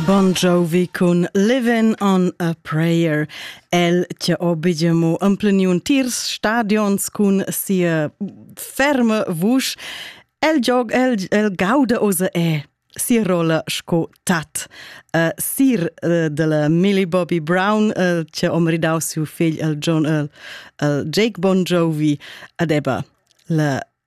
Bon Jovi cun Living on a Prayer. El tia obediemo ampleniun tirs stadions cun sia ferma vusch. El giog, el, el gauda osa e si rolla sco tat. Uh, sir uh, della Millie Bobby Brown, uh, tia om ridau siu figl, el John, el, el Jake Bon Jovi, adeba la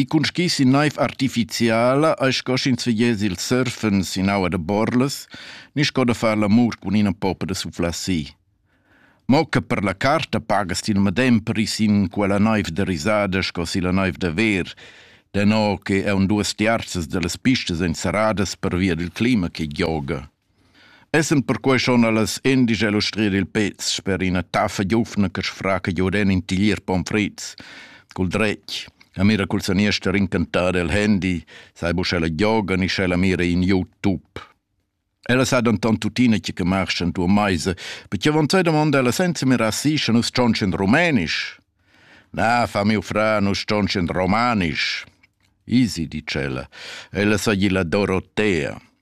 I cunschiss in naiv artificiala eis sco sch'ins vegess il surfen sin aua da borlas, ni sco da far l'amur cun ina poppa da suflassi. Mo che per la carta pagas ti il medem pris in quella naiv da risada sco si la naiv da ver, deno che eu duos tiarzas da las pistas èn serradas pervia dal clima che gioga. Essend perquei schon allas endisch elustrir il pez sper ina taffa giufna che sfraca giuren in tiglier pomfrits, cul dretg, e mira cul saniester incantar el handy, sai bu sch'ella gioga ni sch'ella mira in YouTube. Ella sa denton tuttina che marsch en tua meisa, perché von zwei domanda ella senza mirar si, sche nus stonch in rumenisch. Na, fa miu fra, nus stonch in romanisch. Easy, dice ella. Ella sa gli la Dorotea.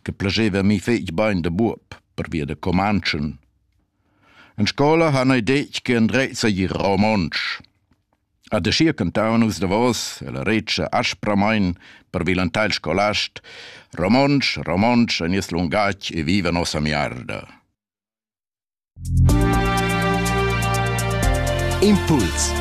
che placeva mi fetg bein da buob pervia da Comanchen. In scola han ei detg che Andrez ei ir romontsch. A de schier cantau nus davos e la recia aspramein per vilanteil scolast romontsch, romontsch en nies lungatg e viva nossa miarda. Impuls